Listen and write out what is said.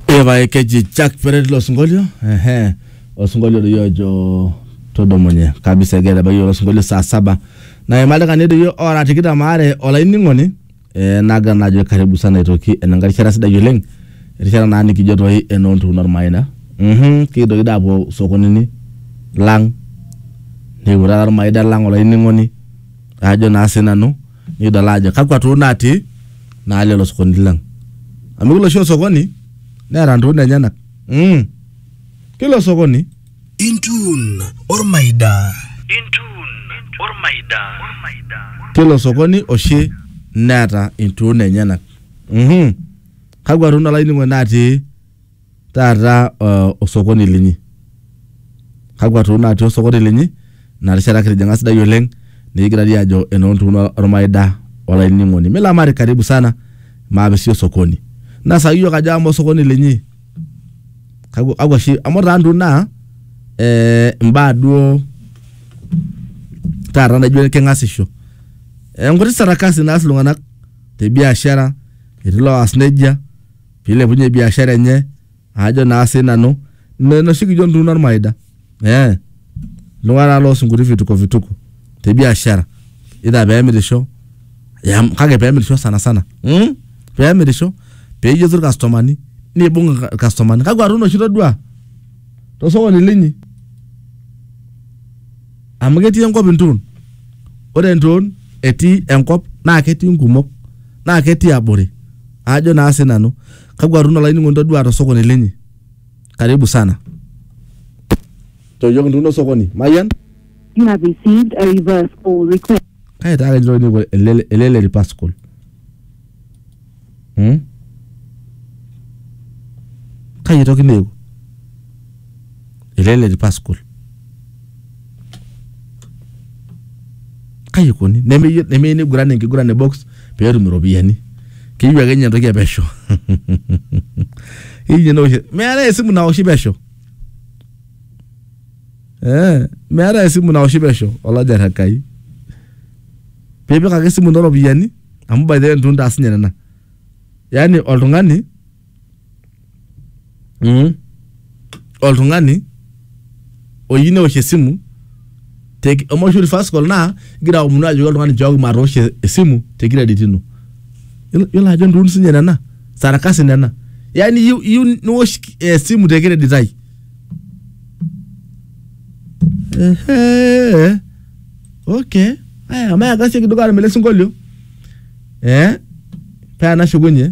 Evae keji Jack Peret lo sinkolio ehe osinkolio liyo ojo todomonye kabisa egira abaiki ilo sinkolio saa saba na imalikani doi ora tikitam aare olainining'oni eh, nagira naa ajo karibu sana aitoki enenkae rishata sidai oleng erishata naa nikijo toi enoontuun ormaina mhm kikidoki doi apuo sokonini lang nikipuo taata ormaida lang olainining'oni ajo naa sinanu nikidol ajo kakwa too natii naa lelo sokoni lang amu kila oshi osokoni neeta ntokitin enyenak mm. kila osokoni Intun ormaida. Intun ormaida. kila osokoni oshi neeta intuun enyenak mm kakwa tuun olainining'oni natii taata uh, osokoni linyi kakwa too natii osokoni linyi ina rishata kitijing'a sidai oleng nikigirari ajo enoontuun ormaida olainining'oni milamari karibu sana maape sii osokoni nasaki iyiok ajo ama osokoni linyi kakwa kakwa shi amu taa ntuun naa eh, imbaa duo taata naijo keng'asisho Eh, nkuti sarakasi naas iltung'anak te biashara etii loas nejia pilepunye biashara enye ajo naa sinanu N- noshi kijo ntuuno ormaida eh iltung'anak loosunkuti vituko vituko te biashara either peemirisho ya, kake peemirisho sana sana mm? peemirisho peyieu irkastomani nibung irka- irkastomani kakwa tuuno oshi todua tosokoni linyi amu ketii enkop intuun ore entuun etii enkop naa ketii nkumok naa ketii abori ajo naa sinanu kakwa tuno olainining'oni todua tosokoni linyi karibu sana toyioki ntuuno sokoni mayian You have received a reverse call request. kai taa ketii olainining'oni ele ele le ripascol hmm? kai etoki neeku elele di Pascal kai ikoni nemeyieu nemeyieu niguran enkiguran e box pee etum iropiyiani keyieu ake ninye entoki e pesho keyieu ninye neosh meetae esimu naoshi pesho eh meetae esimu naoshi pesho olaja Enkai piipik ake esimu ino iropiyiani amu by the way itu intaas ninye nena yaani oltung'ani mm. oltung'ani oyieu neosh esimu te- amu oshi reverse call naa igira aomonu ajoki oltung'ani nchooki matoosho esimu te credit ino Yiolo- yiolo ajo ntuun sinye nena sarakasi nena yaani iyieu iyieu niwosh esimu te credit ai Ehe. okay aya mayakasieki dukuya aarany ele sinkolio eh paa enashukunye